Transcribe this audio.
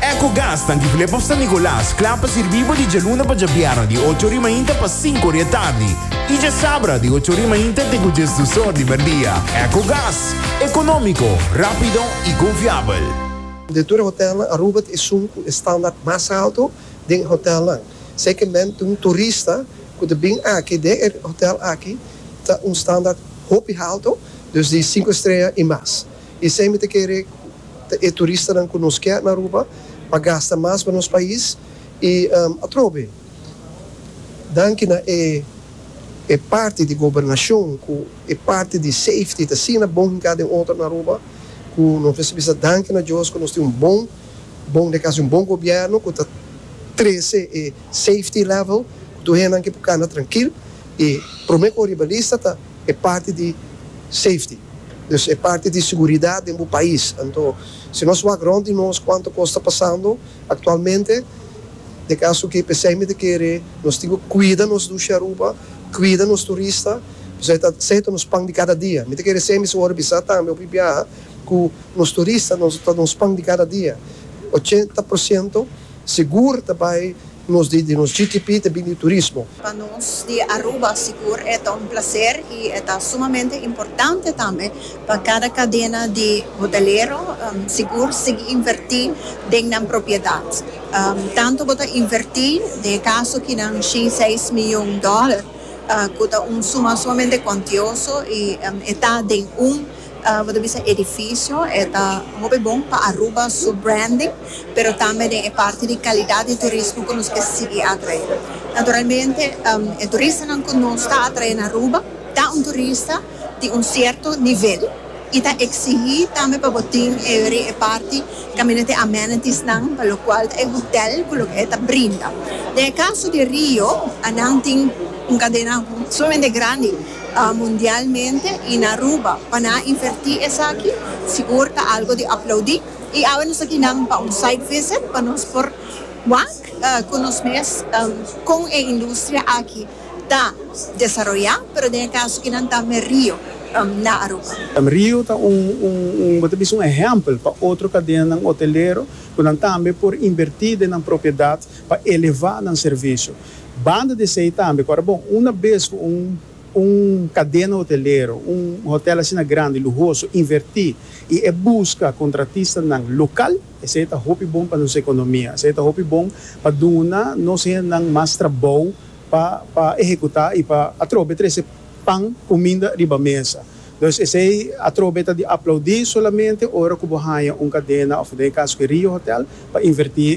Ecogas ta Antigulé pa San Nicolas, kla pa sirbí bo di djaluna pa djabierna di ocho ori mainta pa sinku ori e tardi i djasabra di ocho ori mainta te ku djes dus or di merdia. Ecogas, ekonómiko, rápido i konfiabel. De tur e hotelnan, Aruba ta esun ku e standaard mas alto den e hotelnan. Esei ke men ta un turista ku ta bin aki den e hotel aki ta un standaard hopi halto, dus di sinku estrella i mas. Esei mi ta kere ta e turistanan ku nos ke na Aruba pa gasta mas pa nos pais i atrobe danki na e e parti di gobernashon ku e parti di safety ta asina bon hinká den otro na Aruba ku nos mester bisa danki na Dios ku nos tin un bon bon de kasi un bon gobièrnu ku ta trese e safety level ku tur hendenan ke por kanda trankil i promé ku oor riba lista ta E parti di safety, dus e parti di seguridat den bo pais. Anto, si nos wak rond di nos kuantu kos ta pasando aktualmente, te kaso ke p'esei mi ta kere nos tin ku kuida nos dushi Aruba, kuida nos turista, p'esei ta esei ta nos pan di kada dia. Mi ta kere esei mester wòrdu bisa tambe hopi biaha ku nos turista ta nos pan di kada dia. Ochenta por siento. Sigur ta bai nos di nos GTP ta bini di turismo. Pa nos di Aruba sigur e ta un placer y e ta sumamente importante tambe pa cada cadena di hotelero sigur sigui inverti den nan propiedad. Tanto bo ta inverti den e caso aki nan shin seis miljoen dollar cu ta un suma sumamente cuantioso y e ta den un Bo ta bisa edificio e ta hopi bon pa Aruba su branding pero tambe den e parti di calidad di turismo cu nos ke sigui atrae. Naturalmente e turistanan cu nos ta atrae na Aruba ta un turista di un cierto nivel y ta exigi tambe pa bo tin e weri e parti caminda te amenitiesnan pa locual ta e hotel cu loke e ta brinda. Den e caso di Rio nan tin un cadena sumamente grandi. mundialmente y na Aruba pa nan a inverti esaki sigur ta algo di aplaudi y awe nos ta aki nan pa un site visit pa nos por wak cu nos mes con e industria aki ta desaroya pero den e caso aki nan ta me Rio na Aruba. Rio ta un un bo ta bisa un ehempel pa otro cadenanan hotelero cu nan tambe por inverti den nan propiedad pa eleva nan servicio Banda di esei tambe ku ora bo una bes ku un un kadena hotelero, un hotèl asina grandi, luhoso, invertí i e buska kontratistanan lokal, esei ta hopi bon pa nos ekonomia. Esei ta hopi bon pa duna nos hendenan mas trabou pa pa ehekutá i pa atrobe trese pan, kuminda, riba mesa. Dus esei atrobe ta di aplaudí solamente ora ku bo haña un kadena òf den e kaso ke Rio Hotèl pa invertí.